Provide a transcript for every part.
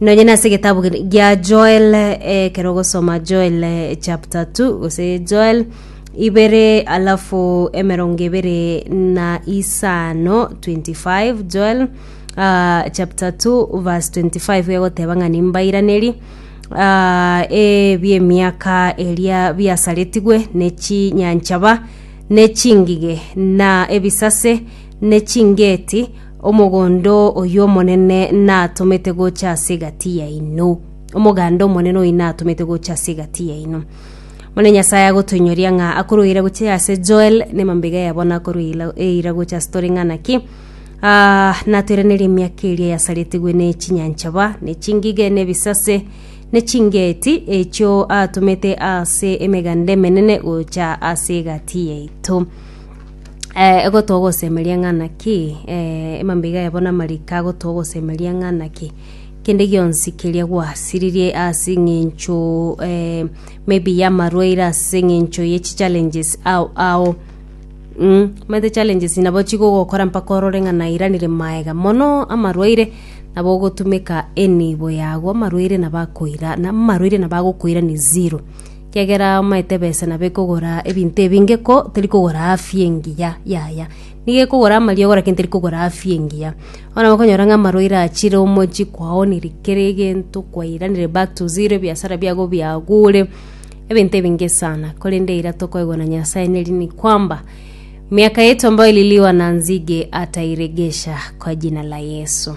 Nonye nase egetabu gia Joel, ekero ogosoma Joel chapter 2 gose Joel ibere alafu emerongo ebere na isano 25 Joel uh, chapter 2 verse 25 gegoteba ng'a nimbairaneri uh, ebiemiaka eria biasaretigwe ne chinyanchaba ne chingige na ebisase ne chingeti Omogondo oyio Omonene natomete gocha ase egati yaino. Omoganda Omonene oyio natomete gocha ase egati yaino. Omonene Nyasae agotoinyoria ng'a akorwa eira gocha ase Joel, na emambaiga yabo nakorwa eila- eira gocha ase tore ng'a naki Ah, natoiranerie emiaka eria yasaretigwe ne chinyanchaba, ne chingige, ne ebisase, ne chingeeti, echio atomete ase emeganda emenene gocha ase egati yaito. Eh, egotoa ogosemeria ng'ana ki? Eh, emambeiga yabo namariko agotoa ogosemeria ng'ana ki? Kende gionsi keria gwasiririe ase eng'encho eh, maybe yamarwaire ase eng'encho ye chichallenges ao ao mm, omanyete challenges nabo chigogokora mpaka orore ng'a nairanire maega mono amarwaire nabo ogotumeka enibo yago amarwaire nabo akoira na amarwaire nabo agokoira ni zero. Ekiagera omaete ebesa nabo ekogora ebinto ebinge ko teri kogora afya engiya, yaya, nigo ekogora amariogo lakini teri kogora afya engiya. Bono okonyora ng'a amarwaire achire omochie kwaonire kera egento kwairanire back to zero ebiasara biago biagure ebinto ebinge sana korende eira tokoegwa na Nyasaye neri ni kwamba miaka yetu ambayo ililiwa na nzige atairegesha kwa jina la Yesu.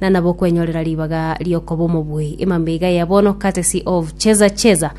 na nabo kwenyorera ribaga riokoba omobuyi emambeiga ya bono courtesy of cheza cheza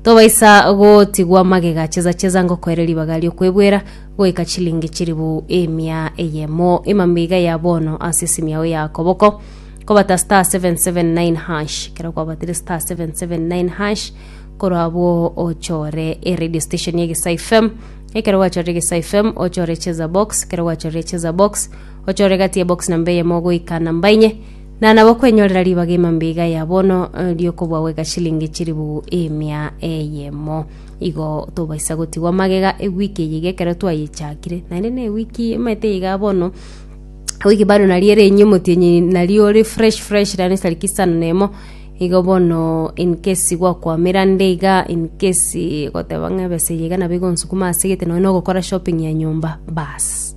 tobaisa gotigwa magega cheza cheza ngokoere ribaga riokwebwera goika chilingi chiribu emia eyemo emambeiga ya bono ase esimi yao ya koboko kobata star 779 hash kero kwabatire star 779 hash korwa abwo ochore e radio station ya egesai fm ekero gwachorire egesai fm ochore cheza box ekero gwachorire cheza box Ochore gati ebox namba eyemo goika namba inye, na nabo kwenyorera ribaga emambiga ya bono eh, riokobua gweka shilingi chiribugu emia eyemo. Igo tobaisa gotigwa magega ewiki eye iga ekero twayechakire, naende na ewiki emanyete iga bono wiki bado nari ere enye omotienyi nari ore fresh fresh rani sariki sana nemo igo bono in case gwakwamera nde iga in case goteba ng'a ebesa eye iga nabo igonsukuma ase egete nonye nogokora shopping ya nyomba baas